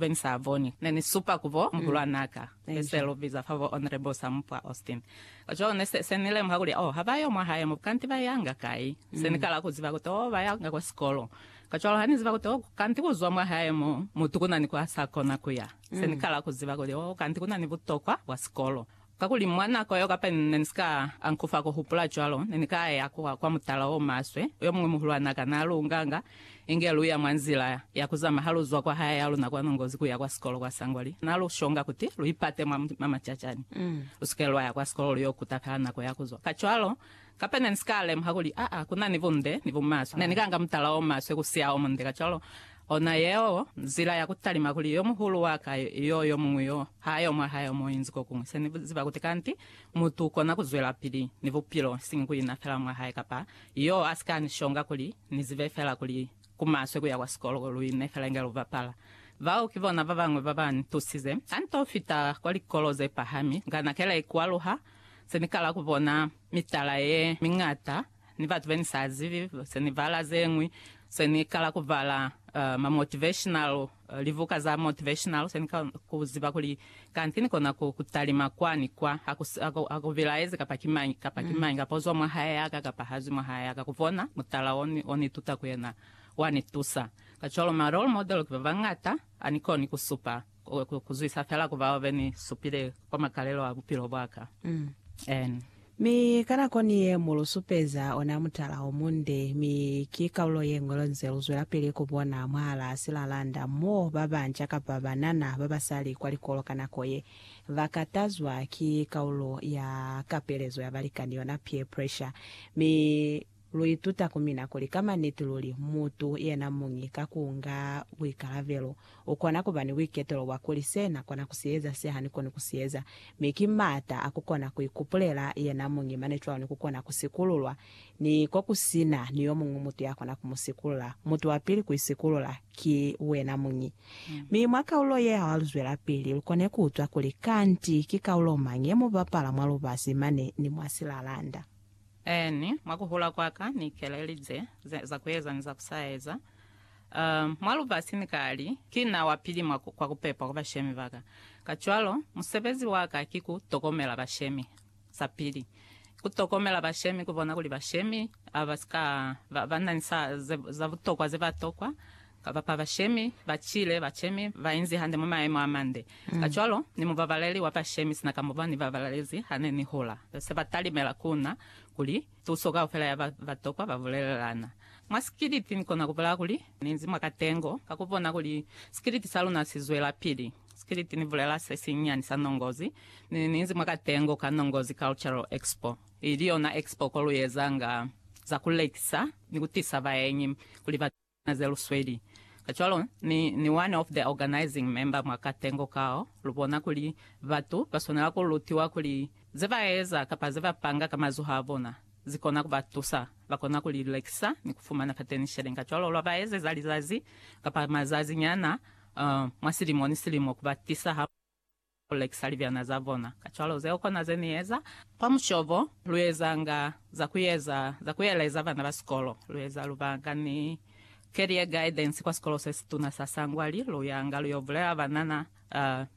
Be ni sa boni. Ne ni supa ku bo muhulwan'a ka, be se lu biza fa bo Honorable Sampwa Austin. Kacwalo ne se, se ni lemuha kuli, oh, ha ba yo mwa hae mo, kanti ba yanga kai? Se ni kala ku ziba kuti, oh, ba yanga kwa sikolo. Kacwalo ha ni ziba kuti, oh, kanti ku zwa mwa hae mo, mutu ku na ni kwa sa kona ku ya. Se ni kala ku ziba kuli, oh, kanti ku na ni butokwa bwa sikolo. Kakuli mwa nako yeo kapa ni ne ni si ka ankufa ku hupula cwalo, ne ni ka ya kwa, kwa mutala o maswe, yo muñwi muhulwana ka na lu nganga, inge lu ya mwa nzila ya ku zama ha lu zwa kwa haya ya luna kwa Nongozi ku ya kwa sikolo kwa Sangwali. Na lu shonga kuti lu ipate mwa, mwa macacani. Lu si ke lwa ya kwa sikolo lu yo kuta fela nako ya ku zwa. Kacwalo, Kape ne ni si ka lemuha kuli aa ku na ni bunde ni bumaswe. Ne ni ka nga mutala o maswe ku siya o munde. Kacwalo, ona yeo nzila ya ku talima kuli yo muhulu wa ka yo yo muñwi yo ha yo mwa hae o mo inzi ko kuñwi. Se ni ziba kuti kanti mutu u kona ku zwelapili ni bupilo, isiñi ku ina fela mwa hae kapa yo a si ka ni shonga kuli ni zibe fela kuli ku maswe ku ya kwa sikolo lu ine fela inge lu bapala. Bao ki bona ba bañwi ba ba ni tusize. Ha ni to fita kwa likolo ze pahami, nga na kela ikwaluha se ni kala ku bona mitala ye miñata ni batu be ni sa zibi. Se ni bala ze ñwi, se ni kala ku bala ma motivational, libuka za motivational, se ni kala ku ziba kuli kanti ni kona ku talima kwa ni kwa, ha ku, ha ku bilaezi kapa ki mañi kapa ki mañi, kapa u zwa mwa hae ya ka kapa ha zwi mwa hae ya ka. Ku bona mutala o ni, o ni tuta ku yena, wa ni tusa. Kacwalo ma role model ki ba bañata, ha ni koni ku supa. Ku zwisa fela ku bao be ni supile kwa makalelo a bupilo bwa ka. N. Mi ka nako ni ye mu lu supeza ona mutala o munde, mi ki kalulo ye ñwi lwa nze lu zwelapili ku bona mwahalaa silalanda mo ba banca kapa banana ba ba sa li kwa likolo ka nako ye, ba katazwa ki kalulo ya kapelezo ya balikani, yona peer pressure. Mi. Lu ituta ku mina kuli ka maniti luli mutu yena muñi ka ku nga buikalabelo u kona ku ba ni buiketelo bwa kuli se na kona ku si eza se ha ni koni ku si eza, mi ki m'ata a ku kona ku ikupulela yena muñi mane cwalo ni ku kona ku sikululwa, ni ko ku si na ni yo muñwi mutu ya kona ku mu sikulula. Mutu wa pili ku isikulula ki wena muñi. Mi mwa kaulo ye ha lu zwelapili, lu kone ku utwa kuli kanti ki kaulo mañi ye mu bapala mwa lubasi mane ni mwa silalanda. Eeni, mwa ku hula kwa ka, Ni ikelelize za ku eza ni za ku sa eza mwa lubasi. Ni ka li, Ki na wa pili mwa kwa ku pepa kwa bashemi ba ka. Kacwalo, musebezi wa ka ki ku tokomela bashemi. Sa pili, ku tokomela bashemi, ku bona kuli bashemi ba si ka ba na ni za butokwa ze ba tokwa, Kaba pa bashemi ba cile bacemi ba inzi hande mwa maemo a mande. Kacwalo, ni mubabaleli wa bashemi sina ka mo ba ni babalezi ha ne ni hula. Se ba talimela ku na kuli, Tuso kaufela ya ba ba tokwa ba bulelelana. Mwa sikiliti ni kona ku bulaya kuli ni inzi mwa katengo ka ku bona kuli sikiliti sa luna si zwelapili. Sikiliti ni bulela se sinyani sa Nongozi, ni ni inzi mwa katengo ka Nongozi Cultural Expo, ili yona expo ko lu ezanga za ku lekisa ni ku tisa baenyi kuli ba. Na ze lusweli. Kacwalo, ni, ni one of the organizing member mwa katengo kao, lubona kuli batu baswanela ku lutiwa kuli ze ba eza kapa ze ba panga ka mazoho a bona, zi kona ku ba tusa. Ba kona ku li lekisa ni ku fumana fateni sheleni. Kacwalo, lwa ba ezeza lizazi kapa mazazi nyana, uh, mwa silimo ni silimo, ku ba tisa ha. Ku lekisa libyana za bona. Kacwalo zeo kona ze Ni eza. Kwa mushobo, lu ezanga za ku eza za ku eleza bana ba sikolo. Lu eza lubaka ni Career Guidance kwa sikolo se situna sa Sangwali. Lu yanga lu yo bulela banana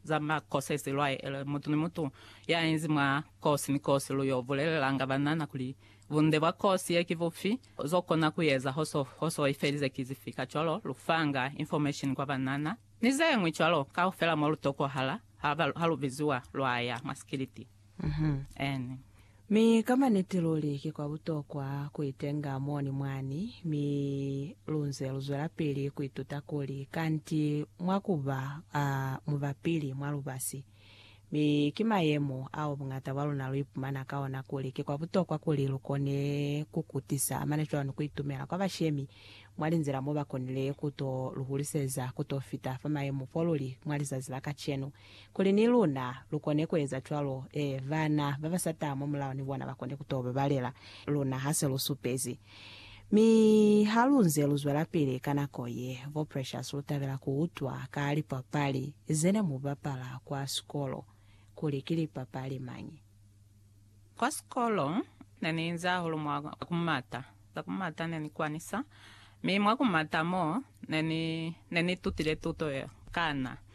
za ma courses lwa ele. Mutu ni mutu ya inzi mwa kosi ni kosi, lu yo bulelelanga banana kuli bunde bwa kosi ye ki bufi, zo kona ku eza ho so i felize ki zifi. Kacwalo, lu fanga information kwa banana. Ni ze ñwi cwalo, kaufela mo lu tokohala ha, ha lu biziwa lwa ya mwa sikiliti. Amen. Mi ka maniti luli ki kwa butokwa ku itenga mo ni mwani, mi lu nze lu zwelapili ku ituta kuli kanti mwa ku ba, a, mubapili mwa lubasi. Mi ki mayemo ao buñata bwa luna lu ipumana ka ona kuli ki kwa butokwa kuli lu kone ku kutisa amana cwani ku itumela kwa bashemi mwa linzila mo ba konile ku to lu huliseza ku to fita fa mayemo fo lu li mwa lizazi la kacenu, kuli ni luna lu kone ku eza cwalo, ee, bana ba ba sa taha mwa mulao ni bona ba kone ku to babalela luna ha se lu supezi. Mi ha lu nze lu zwelapili ka nako ye, bo Precious lu tabela ku utwa ka lipapali ze ne mu bapala kwa sikolo, kuli ki lipapali mañi. Kwa sikolo, ne ni inzi hahulu mwa ku mata. Za ku mata ne ni kwanisa, mi mwa ku mata mo, ne ni, ne ni itutile tuto ye kana.